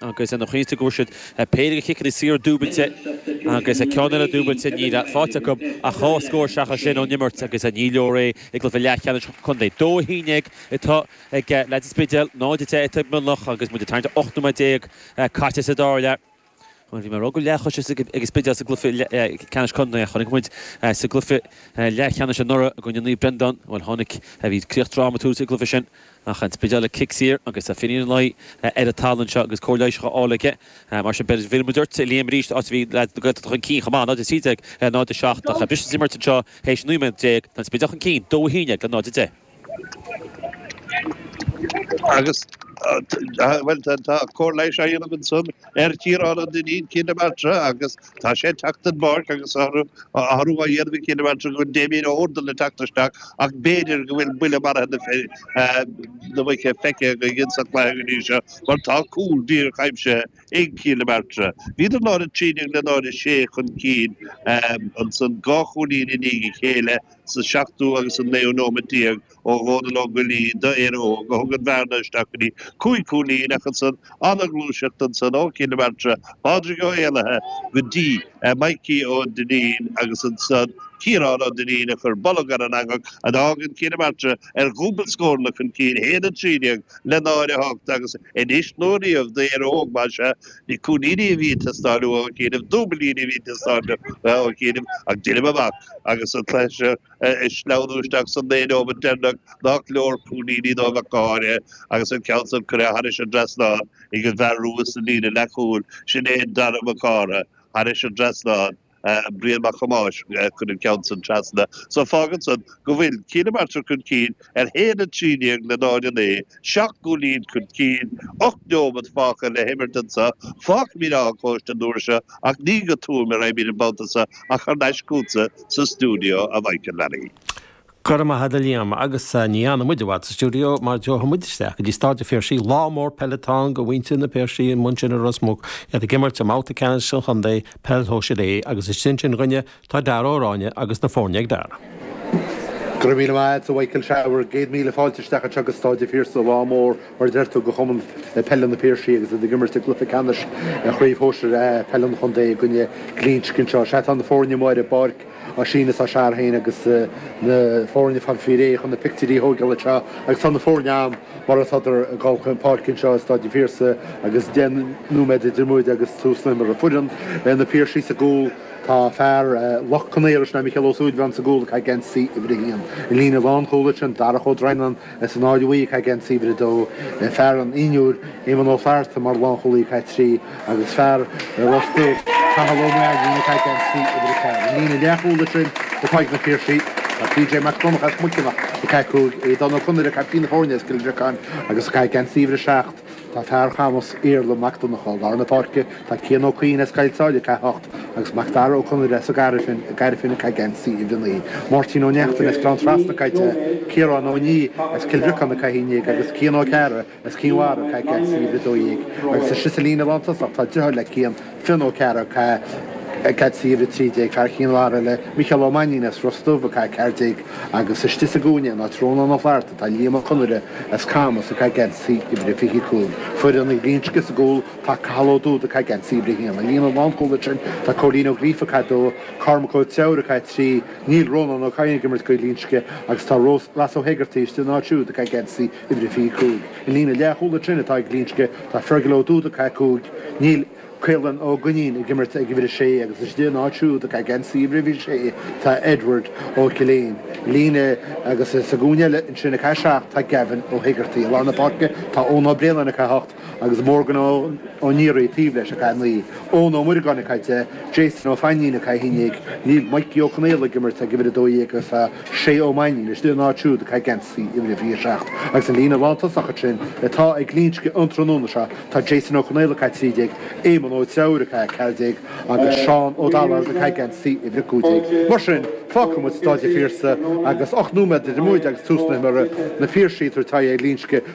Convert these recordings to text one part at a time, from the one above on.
agus lena chois sin go bhfuair siad péire de chiceanna saora dúbailte agus ceann eile dúbailte, níl faighte acu ach dhá scór seachas sin ón imirt agus ní leor é i gcluiche leathcheannais an chontae. Dó a haon dhéag atá ag leads an Spidéil, 0-10 atá ag Mionlach agus muid ag tarraingt ar ocht nóiméad déag caite sa dara leath. Bhí mé ag rá go raibh aiséirí ag an Spidéal sa gcluiche ceannais contae a chonaic muid sa gcluiche leathcheannais anuraidh i gcoinne Naomh Breandáin. Bhuel, tháinig. Bhí críoch drámatúil sa gcluiche sin. Ach an Spidéal le cic saor agus tá Finian Ó Laoi ar an talamh anseo agus cóir leighis dhá fháil aige. Mar sin b'fhéidir go bhfuil muid ag dul ag Liam arís áit a bhí leaids na Gaeltachta chun cinn chomh maith, 0 13, 0 7. Tá briseadh san imirt anseo théis 19 nóiméad tá an Spidéal chun cinn, 2 11 le 0 10. Agus tá, bhuel, tá cóir leighis á dhéanamh ansan ar Chiarán Ó Duinnín, Cill na Martra agus. Tá sé ag teacht den bpáirc agus tá athrú á dhéanamh ag Cill na Martra go bhfuil Damien Ó hUrdail le teacht isteach ach b'fhéidir go bhfuil buille maraithe na muice feicthe againn sa chluiche go dtí seo mar tá cúl díreach aimsithe ag Cill na Martra. Bhíodar náid a trí déag le náid a sé chun cinn ansan dhá chúilín i ndiaidh a chéile sa seachtú agus an naoú nóiméad déag ó Dhónal Ó Goillí d'Éire Óg a thug an bhearna isteach go dtí cúig chúilín ach ansan an-ghluaiseacht ansan ó Chill na Martra, Pádraig Ó hÉalaithe go dtí Mikey Ó Duinnín agus ansan Ciarán Ó Duinnín a chuir bolg ar an eangach fágann Cill na Martra ar dhúbailt scóranna chun cinn 1-13 le 0-8 agus anois nó riamh d'Éire Óg más ea. Ní cúilíní a bheidh ag teastáil uathu ach ní dúbailíní a bheidh ag teastáil uathu ag déanamh ach déanamh amach agus an cluiche seo a sleamhnú isteach sna naoi nóiméad deireanach nach leor cúilíní dóibh ach go háirithe agus an ceann san curtha thairis an dtrasnán ag an bhfear rua sa líne leathchúil, sin é Dara Mac Cártha, thairis an dtrasnán. Brian Mac Thomáis chuir an ceann san trasna. So fágann san go bhfuil, Cill na Martra chun cinn, ar 1 13 le 0 9, 7 gcúilín chun cinn, 8 neomat fágtha le himirt anso, fágfaimid Áth an Chóiste an uair seo ach ní go Tuaim ár n-oibín an babhta seo ach thar n-ais chugatsa sa stiúideo a Mhichíl Lally. Go raibh maith agat a Liam agus ní fhanann muid i bhfad sa stiúideo mar gabhfaidh muid isteach go dtí Stáid an Phiarsaigh, lá mór peile atá ann do mhuintir na bPiarsach ansin i Ros Muc, iad ag imirt i mbabhta ceannais an chontae, Peil Shóisir A, agus istigh ansin dhúinne Tá Dara Ó Ráinne agus na foirne ag Dara. Go raibh míle maith a't, a Mhichíl is ea fearaim. Céad míle fáilte isteach anseo go Stáid an Phiarsaigh. Lá mór, mar a deir tú, do Chumann Peile na bPiarsach agus iad ag imirt i gcluiche ceannais Chraobh Shóisir A Peile an Chontae i gcoinne Ghlinsce anseo. Sea, tá na foirne amuigh ar an bpáirc, á síneadh is á searradh féin agus na foirne fáil faoi réir chun na pictiúirí a thógáil anseo agus tá na foirne ann mar atádar ag dul chun páirce anseo i Stáid an Phiarsaigh agus deich nóiméad idir muide agus tús an imeartha. Foireann na Piarsaigh sa gcúl. Tá fear Loch Con Aortha, sin é Micheál Ó Súilleabháin, sa gcúl ag caitheamh geansaí uimhir a haon. I líne lánchúlaithe ansin, Darach Ó Droighneáin, as an Aill Bhuí ag caitheamh geansaí uimhir a dó. Fear an Inbhir, Éamonn Ó Flatharta, mar lánchúlaí ag caitheamh trí agus fear Ros Muc, Cathal Ó Mainnín, ag caitheamh geansaí uimhir a ceathair. I líne leathchúlaithe ansin atá ag na Piarsaigh, tá PJ Mac Donncha as Muiceanach ag caitheamh cúig, Aodán Ó Conaire, caiptín na foirne as Cill Bhriocáin, agus ag caitheamh geansaí uimhir a seacht. Tá fear Chamais, Iarla mac Donnchadha, lár na páirce, tá Cian Ó Cadhain as Coill Sáile, ag caitheamh 8, agus Mac Dara Ó Conaire as an Gairfean, Gairfean, ag caitheamh geansaí uimhir 9. Máirtín Ó Neachtain as Gleann Trasna, ag caitheamh 10, Ciarán Ó Niaidh as Cill Bhriocáin, ag caitheamh 11, agus Cian Ó Cearra as Cinn Mhara, ag caitheamh geansaí uimhir 12. Agus ansin sa líne lántosach tá driotháir le Cian, Fionn Ó Cearra, ag caitheamh geansaí uimhir a 13, fear Chinn Mhara, le Micheál Ó Mainnín as Ros Dubh, ag caitheamh 14, agus istigh sa gcúinne in áit Rónán Ó Flatharta tá Liam Ó Conaire as Camas, ag caitheamh geansaí uimhir a 25, foireann Ghlinsce, sa gcúl tá Cathal Ó Dúda, ag caitheamh geansaí uimhir a haon. I líne lánchúlaithe ansin tá Cóilín Ó Gríofa, ag caitheamh 2, Cormac Ó Treabhair, ag caitheamh 3, níl Rónán Ó Cadhain ag imirt do Ghlinsce agus tá Ross Ó hÉigeartaigh istigh ina áit siúd, ag caitheamh geansaí uimhir a 25. I líne leathchúlaithe ansin atá ag Glinsce, tá Fergal Ó Dúda, ag caitheamh 5, níl Caolán Ó Duinnín ag imirt ag uimhir a 6 agus istigh ina áit siúd ag caitheamh geansaí uimhir a 26 tá Edward Ó Coileáin. I líne agus sa gcúinne eile ansin ag caitheamh 7 tá Gavin Ó hÉigeartaigh. I lár na páirce tá Eoin Ó Braonáin ag caitheamh 8. agus Morgan Ó Neary taobh leis ag caitheamh 9, Eoin Ó Muireagáin ag caitheamh 10, Jason Ó Fainnín ag caitheamh 11, níl Mikey Ó Conaola ag imirt ag uimhir 12 agus tá Shay Ó Mainnín istigh ina áit siúd ag caitheamh geansaí uimhir a 27. Agus an líne lántosach ansin atá ag Glinsce an tráthnóna seo, tá Jason Ó Conaola ag caitheamh 13, Éamonn Ó Treabhair ag caitheamh 14 agus Seán Ó Dallard ag caitheamh geansaí uimhir 15. Mar sin, fágfaidh muid Stáid a' Phiarsaigh agus ocht nóiméad idir muid agus tús na himeartha, na Piarsaigh ag tabhairt aghaidh ar Ghlinsce.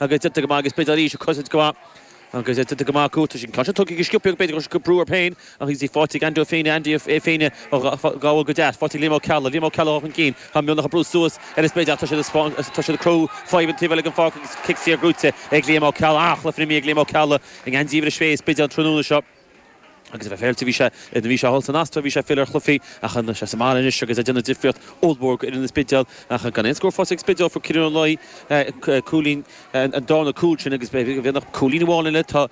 agus déanta go maith ag an Spidéal arís ag cosaint go maith agus déanta go maith acu tá sin tá sé tugtha go sciobtha ag an Spidéal go sciobtha brú air féin ach is í faighte ag Andy Ó Féinne Andy Ó Féinne ag gabháil go deas faighte ag Liam Ó Ceallaigh Liam Ó Ceallaigh ag dul chun cinn tá Mionlach ag brú suas ar an Spidéal ach tá sé do as tá siad ag cruthú fadhb an taobh eile den pháirc agus cic saor gnóite ag Liam Ó Ceallaigh ach le frimí ag Liam Ó Ceallaigh i ngeansaí uimhir a sé ag an Spidéal an tráthnóna seo Agus a bheith féillte bhí sé. Nuair a bhí sé thall san Astráil bhí sé ag filleadh ar Chluffy ach tá sé sa mbaile anois agus ag déanamh difríocht ollmhór d'fhoireann an Spidéil ach gan aon scór faighte ag an Spidéal. Fuair Ciarán Ó Laoi cúilín an darna cúl sin agus b'fhéidir nach cúilín amháin eile tá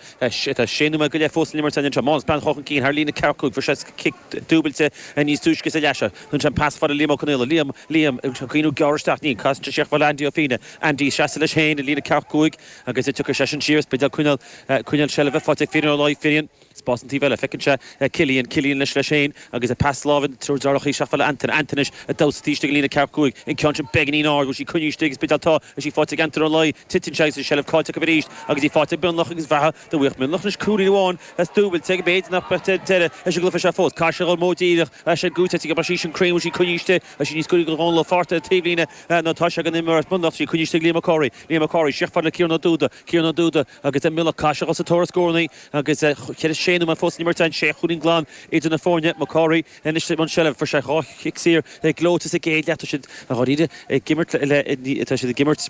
sé nóiméad go leith fós san imirt an anseo. Mánus Breathnach chun cinn thar líne ceathracha fuair sé cic dúbailte níos túisce sa leath seo. Shúnn sé an pas fada Liam Ó Conaola. Liam Liam ag iarraidh gearradh isteach Níl caitheamh isteach Andy Ó Féinne. Andy ag seasamh leis féin i líne ceathracha cúig agus tiocfaidh seisean siar an Spidéal ag coinneáil, coinneáil seilbhe, faighte ag Finín Ó Laoi Finín, spás an taobh eile, feiceann sé Cillian, Cillian leis, leis féin agus an pas láimhe na triúr deartháireachaí isteach fada le Antain, Antain anois ag damhsa taobh istigh i líne ceathracha cúig an ceann sin beagainín ard, bhfuil sí coinnigh istigh ag an Spidéal tá, is í faighte ag Antain Ó Laoi, titeann sé agus an tseilbh caillte acu arís agus í faighte ag Mionlach agus bheatha dá bhfaigheadh Mionlach anois cúilín amháin is dúbailte ag méid nach mbeadh deireadh leis an gcluiche seo fós, caithfidh sé a dhul mó díreach leis an gcúiteamh ag obair sí sin cruinn, bhfuil sí coinnigh istigh, tá sí níos cúinní go Dhónall Ó Fátharta taobhlíne, nó tá sé ag an imreoir as Mionlach, tá sí coinnigh istigh Liam Ó Comhraí. Liam Ó Comhraí, síos fada le Ciarán Ó Dubhda, Ciarán Ó Dubhda agus Mionlach caithfidh siad a dhul sa tóir ar scórannaí agus tá sé nóiméad fós san imirt ann, sé chúilín glan idir na foirne, Mac Cárthaigh anois i mbun seilbh, fuair sé dhá chic saor gleoite sa gcéad leath, tá siad dáiríre ag imirt le, tá siad ag imirt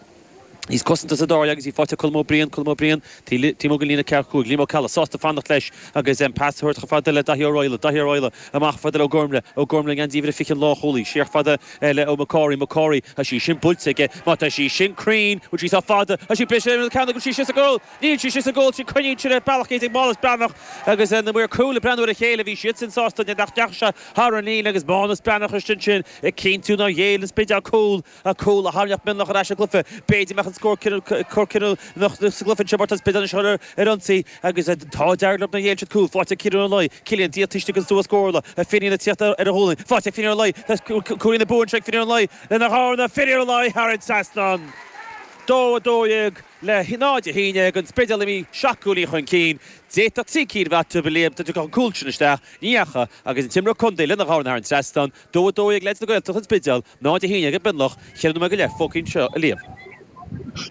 níos cosanta sa dara leath agus í faighte ag Colm Ó Briain, Colm Ó Briain. T mo go líne ceathracha cúig Liam Ó Ceallaigh sásta fanacht leis agus an pas thabhairt chomh fada le Daithí Ó Raghallaigh, Daithí Ó Raghallaigh, amach fada le Ó Gormle, Ó Gormle, an geansaí uimhir fiche an leathchúlaí, siar fada le Ó McCorry, McCorry, Tá sí sin buailte aige má tá sí sin cruinn, bhfuil sí sách fada, tá sí breise an ceann go bhfuil sí sin sa goal, níl sí sin sa goal, sin cruinníonn siad ar bealach iad ag Mánas Breathnach agus na maoir cúil ag breathnú ar a chéile, bhí siad sin sásta nach ndeachaigh sé thar an líne agus Mánas Breathnach isteach ansin ag cinntiú nár ghéill an Spidéal cúl. a cúl a tharraingt ach Mionlach ar ais sa gcluiche. B'fhéidir mbeadh an scór cinniúnach sa gcluiche anseo mar tá an Spidéal anseo ar ionsaí agus tá an t-ádh dearg orthu nár ghéill siad cúl. Faighte ag Cillian Ó Laoi Cillian ag tíocht isteach an stua scórála Finín ag tíocht ar a ghualainn. Faighte ag Finín Ó Laoi tá cúilín na bua anseo ag Finín Ó Laoi lena chur Finín Ó Laoi thar an trasnán dó 12 le 0 11 ag an Spidéal imithe 7 gcúilín chun cinn. D'fhéadfadh trí cinn a bheith acu a Liam dá dtiocfadh an cúl sin isteach ní dheachaigh agus an t-imreoir contae lena chur thar an trasnán Dó 12 ag leaids na Gaeltachta an Spidéal, 0 11 ag Mionloch, cheithre nóiméad go leith fágtha anseo a Liam.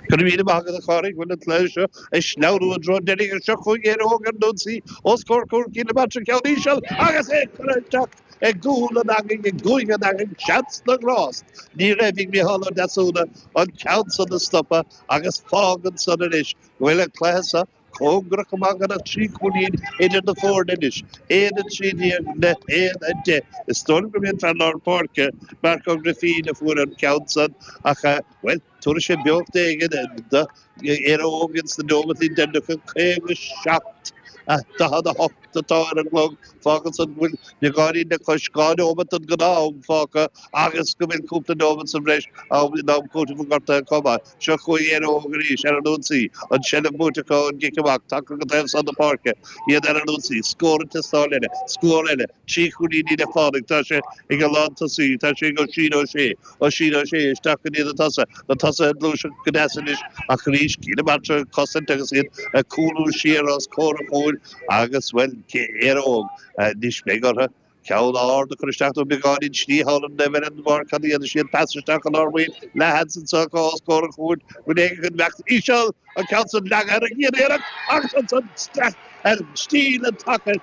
Go raibh míle maith agat, a Phádraig, bhuel an cluiche seo ag sleamhnú i dtreo deiridh ach seo chugainn Éire Óg ar an Ionsaí os comhair cúil Chill na Martra ceann íseal agus é curtha isteach i gcúl an eangaigh i gcúinne an eangaigh seans na ngrást ní raibh ag Micheál Ó Deasúna an ceann san a stopadh agus fágann san anois go bhfuil an cluiche sa cóngarach go maith gan ach trí chúilín idir na foirne anois, 1, 13 le 1, 10. Is dóigh liom gurb é an fear lár páirce, Mark Ó Grifín, a fuair an ceann san ach, bhuel, tabharfaidh sé beocht éigin do Éire Óg ins na nóimeataí deireanacha. 57, 48 atá ar an gclog, fágann san go bhfuil beagáinín le cois dhá nóimeat den ghnáth-am fágtha agus go bhfuil cúpla nóimeat sa bhreis ann in am cúitimh an ghortaithe chomh maith. Seo chugainn Éire Óg arís, ar an ionsaí. An tseilbh buaite acu ón gcic amach, tagtha go taobh san na páirce, iad ar an ionsaí, scór ag teastáil eile, scór eile, trí chúilín le fáil ag, tá sé ag an lántosaí, tá sé ag Oisín Ó Sé, Oisín Ó Sé, isteach go dtí na tosaithe, na tosaithe ag gluaiseacht go deas anois ach arís, Cill na Martra ag cosaint agus iad ag cúlú siar os comhair an chúil agus, bhuel, Éire Óg, anois beidh orthu, Ceann ard a chur isteach nó beagáinín slí thall an doimhin an bharr cad a dhéanfaidh siad? Pas isteach an ár maoin leathsheans anseo go ollscór an chúirt bhain éaga den bhfeachtas íseal an ceann san leagadh ar an gcéad iarracht agus ansan isteach ar stíl an tsacair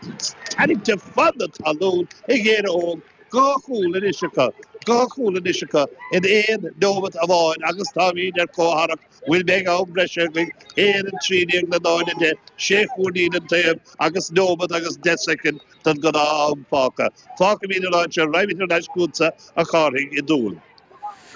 tarraingthe fan na talún ag Éire Óg dhá chúl anois acu dhá chúl anois acu in aon nóimeat amháin agus táimid ar comhtharrac bhfuil mé ag am breise againn féin a trí déag a náid a deich, sé chúilín den taobh agus nóiméad agus deich soicind don ghnáth-am fágtha. Fágfaimid an áit seo raghaimid ar ais chugatsa a Chárthaigh i dTuaim.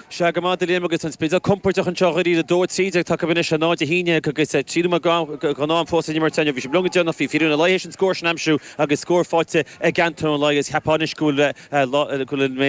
Sea, go raibh maith agat a Liam agus tá an Spidéal compordach anseo dáiríre. Dó a trí déag tagtha anois, a náid a haon déag agus trí nóiméad gnáth-am fós le n-imirt inniu. Bhí sé longa déanach, bhí Finian Ó Laoi théis an scór sin a aimsiú agus scór faighte ag Antaine Ó Laoi agus cheapfá anois go bhfuil mé